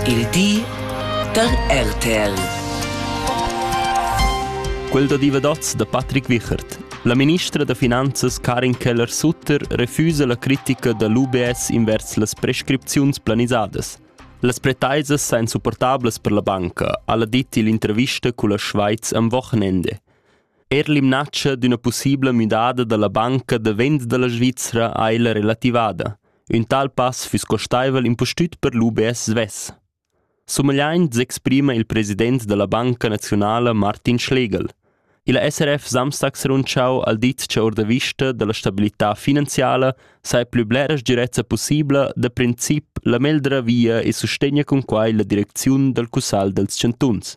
Il di da RTL. Quel da divadats da Patrick Wichert. La ministra da finanzas Karin Keller-Sutter refusa la critica da l'UBS invers las prescripziuns planisadas. Las pretaisas sain supportablas per la banca, ha dit l'intervista culla Schweiz am Wochenende. Er l'imnaccia d'üna possibla müdada da la banca da vend da la Svizzera ha ella relativada. Ün tal pass füss costaivel impustüt per l'UBS svess. Sumegliaint s'exprima il president da la Banca naziunala Martin Schlegel. Il SRF samstags rundschau al dit cha our da vista da la stabilità finanziala saja plü blera sgirezza pussibla da princip la meglra via e sustegna cun quai la direcziun dal cussagl dals chantuns.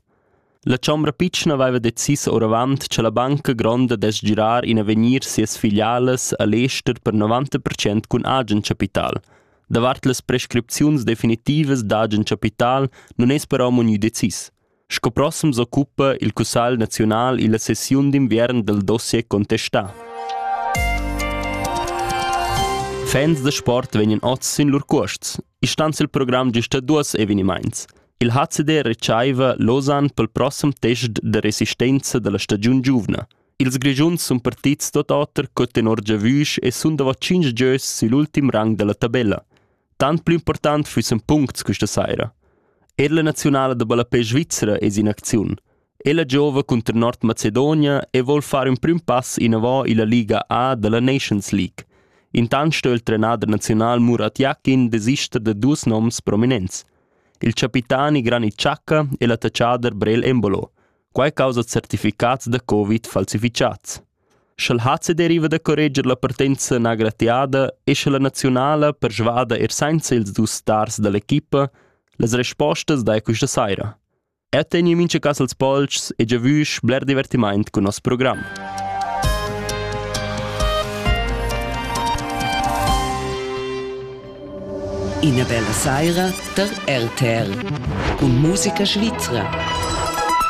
La chombra pitschna veva decis oravant cha la banca gronda dess girar in avegnir sias filialas a l'ester per 90 percent cun agen chapital. Davart las prescripziuns definitivas d'agen chapital nun es però munü decis. Sco prossem s'occupa il Cussagl naziunal illa sessiun d'inviern dal dossier contestà. Fans da sport vegnan oz sin lur cuosts. Istans il program gista duos evenimaints. Il HCD retschaiva Lausanne pel prossem test da resistenza da la stagiun giuvna. Ils Grischuns sun partits tot oter co tenor giavüsch e sun davo tschinch gieus sül ultim rang da la tabella. Tant plü important füssen puncts quista saira. Er la naziunala da ballapè svizra es in acziun. E la giova cunter Nordmacedonia e vol far ün prüm pass inavò illa Liga A da la Nations League. Intant sto il trenader naziunal Murat Yakin desister da duos noms prominents. Il capitani Granit Xhaka e l'attacchader Brel Embolo. Quai causa certificats da Covid falsifichats. Sch'el hat se deriva da correger la partenza nagratiada e sche la nazionala persvada er senza ils dus stars dall'equipa, las respostas dai questa saira. Eu tegni mincha cas als polcs e giavüsch bler divertimaint cun nos program. Ina bella saira da RTL. Und Musica Svizra.